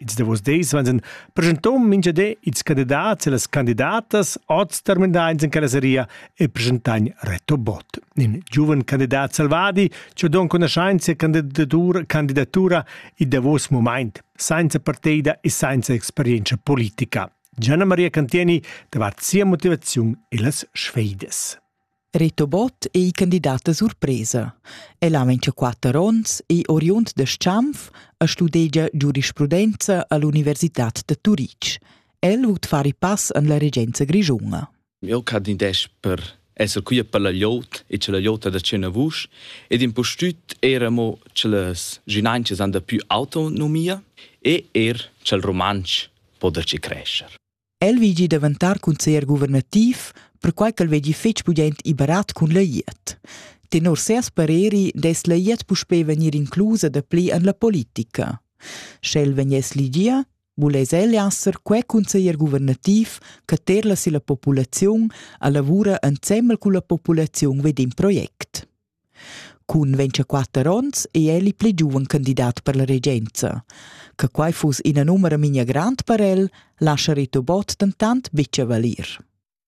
Ils davos dis van sen presentom minchadé ils candidats e las candidatas oz terminains in callaseria e presentagn Reto Bott, in giuven candidat salvadi che don conoscenza e candidatura, candidatura il davos moment, senza parteida e senza experienza politica. Gianna Maria Cantieni davart sia motivaziun e las sfeidas. Reto Bott ei candidat da surpresa. El ha quatter onns, ei oriund da Schanf e studegia giurisprudenza all'Universitad da Turitg. El vut far i pass en la regenza grischuna. Eu candidesch per esser quia per la liot e che la liota da cena vusch ed impustüt era mo che las ginanches han da più autonomia e er ch'el romansch po da ci crescer. El vegli daventar consiglier guvernativ, perquai ch'el vegli fetg pudent e barat cun la glieud. Tenor ses pareri dess la glieud puspè vegnir inclusa da pli en la politica. Sche el vegness ligia, vuless el esser quei consiglier guvernativ che terla si la populaziun a lavura ensemmel cun la populaziun vid in project. Cun vintschaquatter onns ei el il pli giuven candidat per la regenza. Che quei fuss ina numera memia grand per el, lascha Rito Bott dentant buca valir.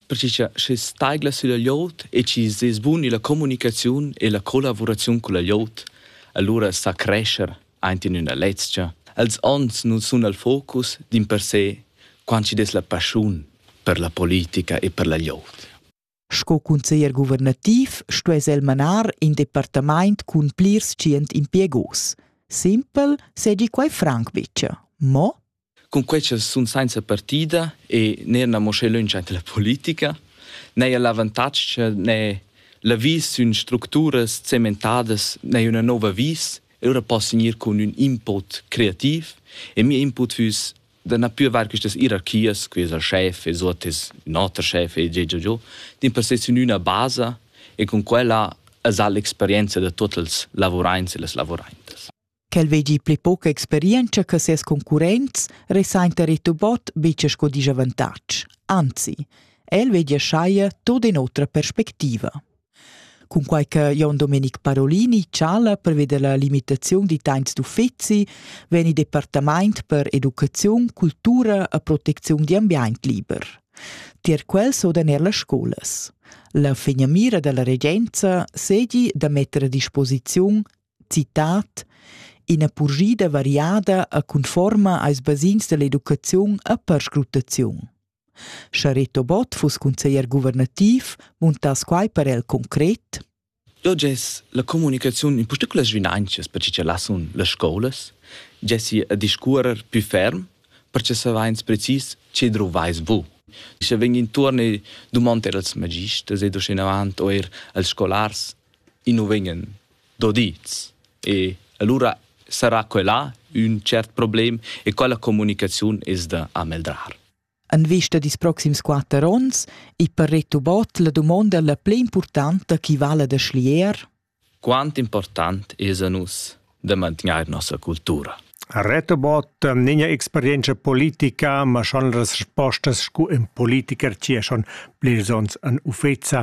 Perché che sche staigla sulla glieud e ci sez bun la comunicaziun e la collaborazione con la glieud, allora sa crescer anche in una lezcha. Els onns non sun al focus din per sé quant ci des la passion per la politica e per la glieud. Sco cunseglier guvernativ stuess el manar in departamaint cun plirs tschient impiegos. Simpel segi quai franc bicha. Mo Cun quei ch'els sun sainza partida e neir mo sche lönch aint la politica, n'haja l'avantatg cha ne l'avis sün structuras cementadas n'haja üna nouva vis, e lura poss gnir cun ün input creativ e mia input füss da na pür var quistas ierarchias, que es el schef e suot es ün oter schef e già già già, din per se sün üna basa e cun quella es ha l'experienza da tuot els lavuraints e las lavuraintas. Quel vegi pli poca experienza che ses concurrents, resainta Ritubot bice sco disavantatg. Anzi, el vegi schaie tot in otra perspectiva. Cunquai che Jon Domenic Parolini chala preveda la limitaziun d'itains d'uffizi vegn il departamaint per educaziun, cultura e protecziun d'ambiaint liber. Tier quels sodan er las scolas. La finamira dalla regenza segi da metter a disposiziun, citat, ina purgida variada e conforma als basins dall'educaziun e perscrutaziun. Sche Reto Bott fuss cunseglier guvernativ, muntass quai per el concret? Da gess la comunicaziun in particular svinanzas per che lassun las scolas, gessi a discuorer più ferm per che saveins precis che druvais bu. Sche vegn intuorn e dumond er als magisters ed uschenavant eir als scolars, i nu vegnan dodids. E allura sarà quella ün cert problem e quella comunicaziun es da ameldrar. En vista dis proxims quatter ons i per retubot la dumonda la pli importanta chi vala da schlier? Quant important es a nus da mantgnair nossa cultura? Retobot n'è experienza politica, ma schon respostas scu in politiker ci è schon plis ons an uffeza